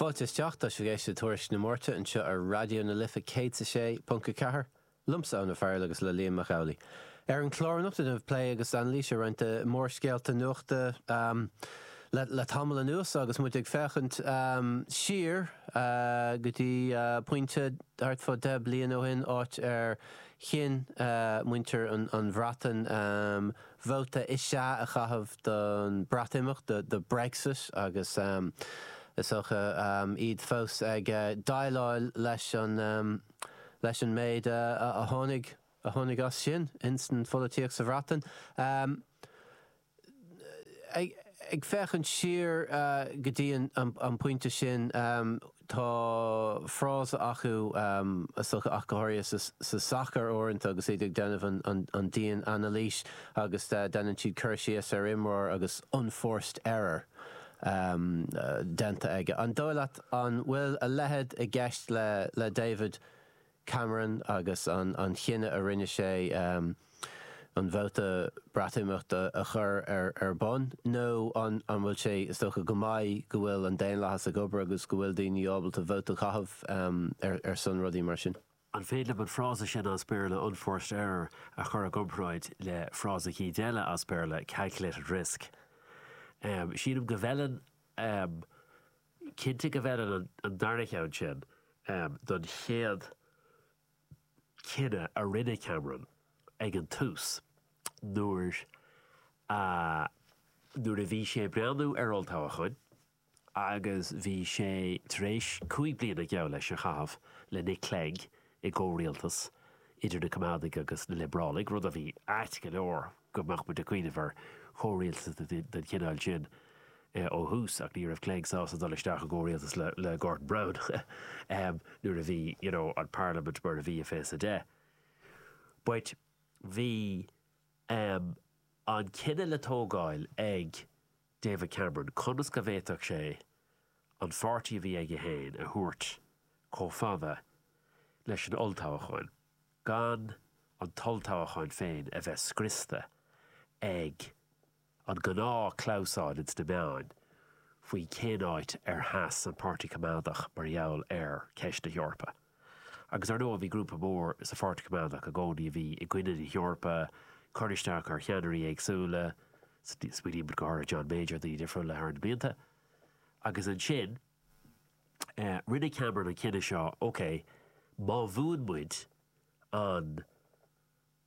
Fáilte isteach, sibhse ag éisteacht le Tuairisc na Máirte anseo ar Raidió na Life 106.4, liomsa Eoin Ó Fearghail agus le Liam Mac Amhlaigh. Ar an chlár anocht déanfaimid plé agus anailís ar roinnt de mhórscéalta nuachta le tamall anuas agus muid ag féachaint siar go dtí pointe thart fá dheich mbliana ó shin, áit ar chinn muintir an Bhreatain, Vóta is ea a chaitheamh don Bhreatimeacht, do Brexit, agus is dócha iad fós ag déileáil leis an leis an méid a tháinig a tháinig as sin ins an pholaitíocht sa Bhreatain. Ag féachaint siar go dtí an pointe sin, Tá frása acu sa sacar, ach go háirithe sa sacar uaireanta agus iad ag déanamh an dian-anailís agus déanann siad cur síos ar imreoir agus unforced error déanta aige. An dóigh leat an bhfuil a leithéid i gceist le David Cameron agus an chinneadh a rinne sé an vóta Breatimeachta a chur ar bun nó an bhfuil sé is dócha go maith go bhfuil an daonlathas ag obair agus go bhfuil daoine ábalta vóta a chaitheamh ar son rudaí mar sin? An féidir liom an frása sin as Béarla 'unforced error' a chur i gcomparáid le frása éigin eile as Béarla 'calculated risk'? Sílim go bhfeileann Cinnte go bhfeileann an darna ceann sin don chéad cinneadh a rinne Cameron ag an tús nuair a nuair a bhí sé ag breathnú ar olltoghchán agus bhí sé tar éis cúig bliana geall leis a chaitheamh le Nick Clegg i gcomhrialtas idir na Coimeádaigh agus na Liobrálaigh, rud a bhí ait go leor. go mbeadh muid ag cuimhneamh ar chomhrialtas den chineál sin ó thús ach ní raibh Clegg sásta dul isteach i gcomhrialtas le Gordon Brown nuair a bhí you know an parlaimint mar a bhí i fiche is a deich but bhí ehm an cinneadh le tógáil ag David Cameron conas go bhféadfadh sé an pháirtí a bhí aige féin a thabhairt chomh fada leis an olltoghchán gan an t-olltoghchán féin a bheith scriosta ag an gnáthchlamhsán ins na meáin faoi cén áit ar sheas an Páirtí Coimeádach mar gheall ar cheist na hEorpa. Agus ar ndóigh bhí grúpa mór sa Pháirtí Coimeádach i gcónaí a bhí i gcoinne na hEorpa, ag cur isteach ar cheannairí éagsúla, smaoinímid go háirithe John Major, daoine difriúla thar na blianta. Agus ansin. Rinne Cameron an cinneadh seo, OK, má bhuann muid an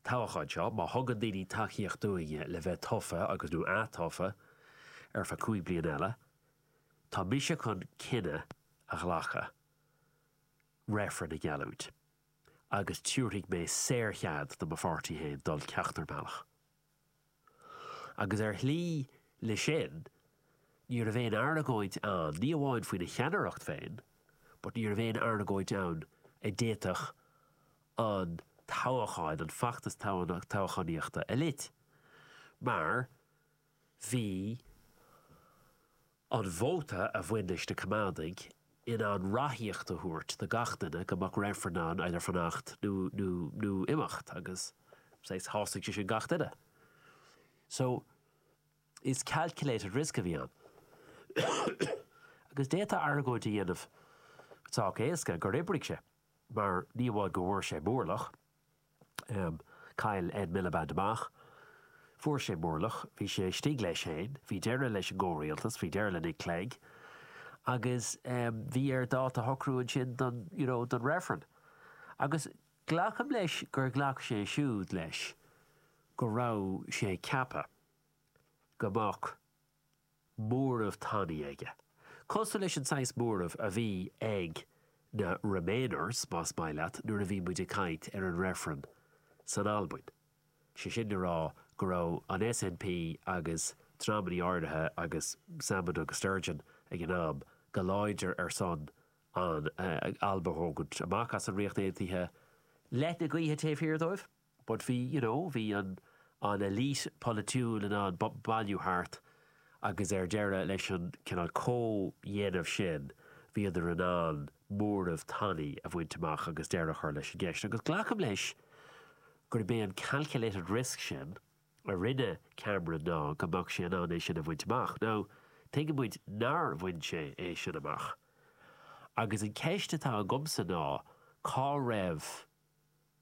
toghachán seo, má thugann daoine tacaíocht dúinne le bheith tofa agus, nó ath-tofa ar feadh cúig bliana eile, tá mise chun cinneadh a ghlacadh, reifreann a gheallúint agus tiúrfaidh mé saor-chead do mo pháirtí féin dul ceachtar bealach. Agus ar shlí leis sin, ní raibh aon argóint ann, ní amháin faoina cheannaireacht féin, but ní raibh aon argóint ann a d'fhéadfadh an toghchán, an feachtas toghchánaíochta a lot. Mar bhí. An vóta a bhain leis na Coimeádaigh in ann ráthaíocht a thabhairt do gach duine go mbeadh reifreann ann idir fanacht nó nó imeacht agus shásaigh sé sin gach duine. So is calculated risk a bhí ann. Agus d'fhéadfá argóint a dhéanamh sách éasca gur oibrigh sé mar ní amháin go bhfuair sé mórlach, Am, chaill Ed Miliband amach. Fuair sé mórlach. Bhí sé istigh leis féin. Bhí deireadh leis an gcomhrialtas. Bhí deireadh le Nick Clegg. Agus bhí air dáta a shocrú ansin don, you know, don reifreann. Agus glacaim leis gur ghlac sé siúd leis go raibh sé ag ceapadh go mbeadh, móramh tanaí aige, cosúil leis an saghas móramh a bhí ag na remainers, más maith leat, nuair a bhí muid ag caint ar an reifreann san Albain. Sé sin le rá go raibh an SNP agus dreamannaí áirithe agus Salmond agus Sturgeon ag an am, go láidir ar son an Alba a thógaint amach as an Ríocht Aontaithe, leis an ngaoth taobh thiar dóibh. But bhí, you know, bhí an an elite polaitiúil in ann bailiú thart agus ar deireadh leis an cineál comhdhéanamh sin bhíodar in ann móramh tanaí a bhaint amach agus deireadh a chur leis an gceist. Agus glacaim leis gurb é an calculated risk sin a rinne Cameron ná go mbeadh sé in ann é sin a bhaint amach. Now, tuigeann muid nár bhain sé é sin amach. Agus an ceist atá agamsa ná cá raibh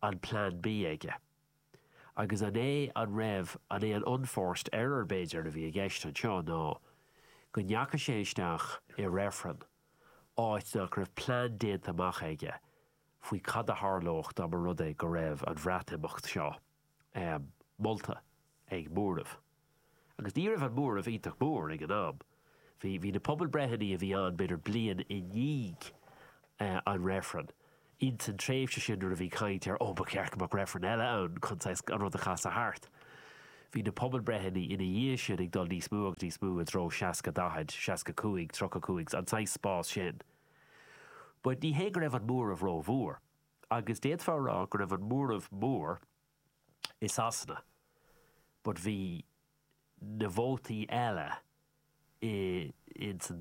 an plean B aige? Agus an é an raibh an é an unforced error b'fhéidir a bhí i gceist anseo ná go ndeachaigh sé isteach i reifreann áit nach raibh plean déanta amach aige faoi cad a tharlódh dá mba rud é go raibh an Bhreatimeacht seo molta ag móramh. Agus ní raibh an móramh iontach mór ag an am. Bhí, bhí na pobalbhreitheanna a bhí ann b'fhéidir bliain i ndiaidh an reifrinn. Ins an tréimhse sin nuair a bhí caint ar ó ba cheart go mbeadh reifreann eile ann chun saghas an rud a chasadh thart. Bhí na pobalbhreitheanna ina dhiaidh sin ag dul níos mó agus níos mó i dtreo 60, 40, 65, 35, an saghas spás sin. But ní hé go raibh an móramh rómhór. Agus d'fhéadfá a rá go raibh an móramh mór i Sasana but bhí na vótaí eile insa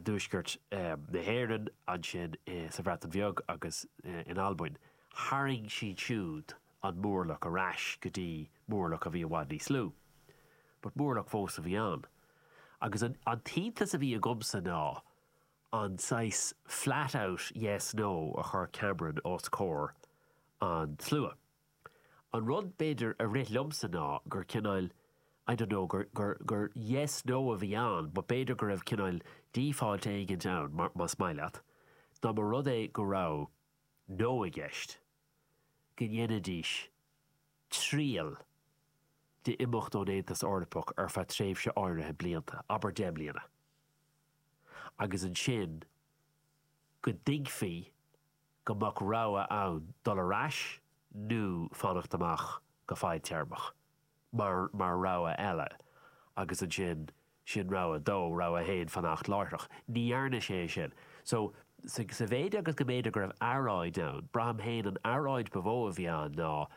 Tuaisceart na hÉireann, ansin sa Bhreatain Bheag agus in Albain, tharraing siad siúd an mórlach ar ais go dtí mórlach a bhí i bhfad níos lú. But mórlach fós a bhí ann. Agus an t-iontas a bhí agamsa ná an saghas flat out yes, no a chuir Cameron os comhair an tslua. An rud b'fhéidir a rith liomsa ná gur cineáil I don't know gur, gur, gur yes, no a bhí ann but b'fhéidir go raibh cineáil default éigint ann mar, más maith leat, dá mba rud é go raibh no i gceist, go ndéanfaidís triail d'imeacht ón Aontas Eorpach ar feadh tréimhse áirithe blianta, abair deich mbliana. agus ansin go dtuigfí go mbeadh rogha ann dul ar ais nó fanacht amach go fadtéarmach mar mar rogha eile agus ansin sin rogha a dó, rogha a haon fanacht láithreach. Ní dhearna sé é sin. So, sa mhéid agus go mb'fhéidir go raibh earráid ann, braithim féin an earráid ba mhó a bhí ann ná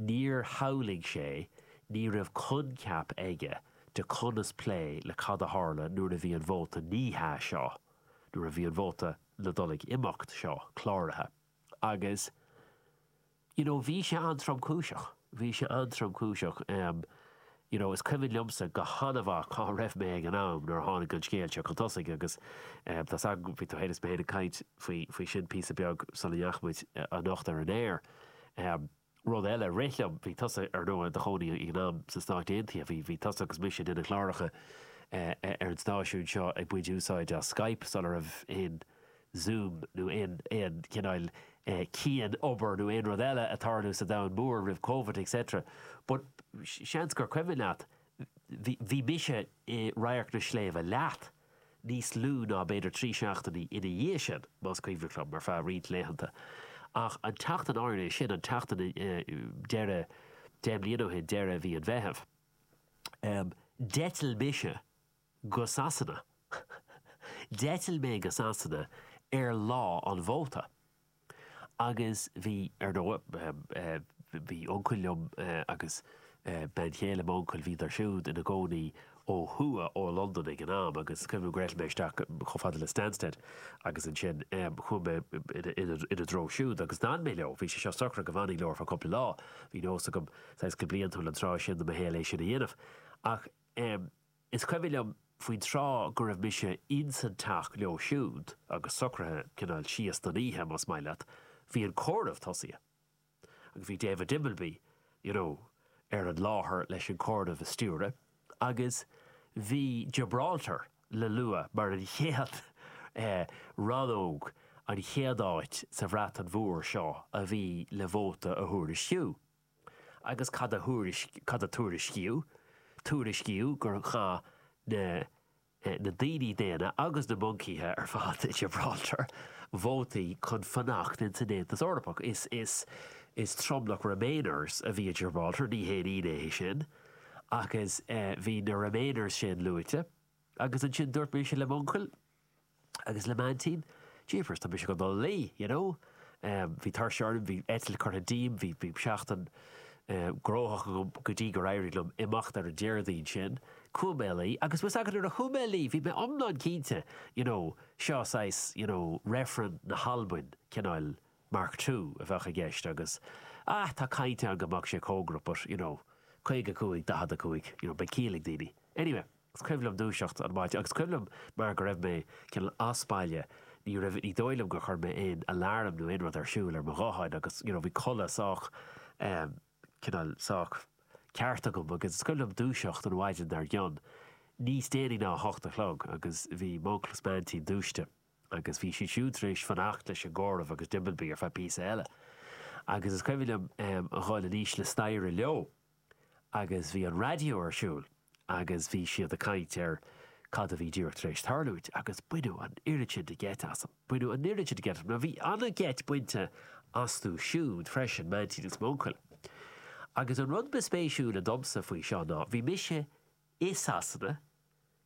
níor shamhlaigh sé, ní raibh coincheap aige, de chonas plé le cad a tharla nuair a bhí an vóta 'ní hea' seo, nuair a bhí an vóta ná dul ag imeacht seo cláraithe agus you know bhí sé an-tromchúiseach, bhí sé an-tromchúiseach em you know is cuimhin liomsa go han-mhaith cá raibh mé ag an am nuair a tháinig an scéal seo chun tosaigh agus em tá's agam faoi tú fhéin is mé fhéin ag caint faoi, faoi sin píosa beag sula ndeachaigh muid anocht ar an aer. Em. Rud eile a rith liom, bhí tusa, ar ndóigh, i do chónaí ag an am sna Stáit Aontaithe, bhí, bhí tusa agus mise ag déanamh cláracha ar an stáisiún seo ag baint úsáid as Skype sula raibh aon Zoom nó aon, aon chineál cianobair nó aon rud eile ag tarlú sa domhan mór roimh Covid et cetera but seans gur cuimhin leat, bhí, bhí mise i Radharc an tSléibhe leat. níos lú ná b'fhéidir trí seachtainí ina dhiaidh sin, más cuimhin liom, ar feadh roinnt laethanta. Ach an tseachtain áirithe sin, an tseachtain deireadh, deich mbliana ó shin, deireadh mhí an Mheithimh, d'eitil mise go Sasana, d'eitil mé go Sasana ar lá an vóta. Agus bhí, ar ndóigh. Bhí uncail liom agus bean chéile m'uncail, bhíodar siúd ina gcónaí ó thuaidh ó Londain ag an am agus is cuimhin liom gur eitil mé isteach chomh fada le Stansted agus ansin chuaigh mé ina dtreo siúd agus d'fhan mé leo. Bhí sé seo socraithe go bhfanfainn leo ar feadh cúpla lá. Bhí nós agam, saghas go bliantúil an tráth sin de mo shaol, é sin a dhéanamh ach. Is cuimhin liom faoin tráth go raibh mise insan teach leo siúd agus socraithe cineál síos don oíche, más maith leat, bhí an comhaireamh tosaithe agus bhí David Dimbleby, you know, ar an láthair leis an comhaireamh a stiúradh agus bhí Gibraltar le lua mar an chéad eh, rannóg, an chéad áit sa Bhreatain Mhór seo a bhí le vóta a thuairisciú. agus cad, cad a tuairiscíodh? Tuairiscíodh gur chaith na, na daoine daonna agus na moncaithe ar fad i Gibraltar vótaí chun fanacht ins an Aontas Eorpach. Is, is tromlach Remainers a bhí i Gibraltar, ní haon ionadh é sin, agus bhí na Remainers sin luaite. Agus ansin dúirt mise le m'uncail, Agus le m'aintín, jeepers, tá mise chun dul a luí, you know. Bhí tuirse orm, bhí eitilt curtha díom, bhí seachtain gnóthach agam go dtí gur éirigh liom imeacht ar an Déardaoin sin. Chuaigh mé a luí agus bhfuil 's agat nuair a chuaigh mé a luí bhí mé iomlán cinnte, you know, seo saghas, you know, reifreann na hAlbain, cineál Mark Two a bheadh i gceist agus, ah, tá caint ann go mbeadh sé cóngarach but, you know, caoga cúig, daichead a cúig, you know, beidh ciall ag daoine. Anyway. Is cuimhin liom dúiseacht an maidin agus is cuimhin liom mar go raibh mé cineál as baile, ní raibh, ní dóigh liom gur chuir mé aon alarm nó aon rud ar siúl ar mo ghuthán agus you know bhí codladh sách ehm cineál sách ceart agam agus is cuimhin liom dúiseacht an mhaidin dar gcionn, níos déanaí ná a hocht a chlog agus bhí m'uncail is m'aintín dúisithe agus bhí siad siúd tar éis fanacht leis an gcomhaireamh agus diabhal bí ar feadh píosa eile agus is cuimhin liom ehm a dhul aníos na staighre leo. agus bhí an raidió ar siúl agus bhí siad ag caint ar cad a bhí díreach tar éis tarlúint agus baineadh an oiread sin de gheit asam, baineadh an oiread sin de gheit asam mar bhí an-gheit bainte astu siúd freisin, m'aintín is m'uncail. Agus an rud ba spéisiúla domsa faoi seo ná, bhí mise i Sasana,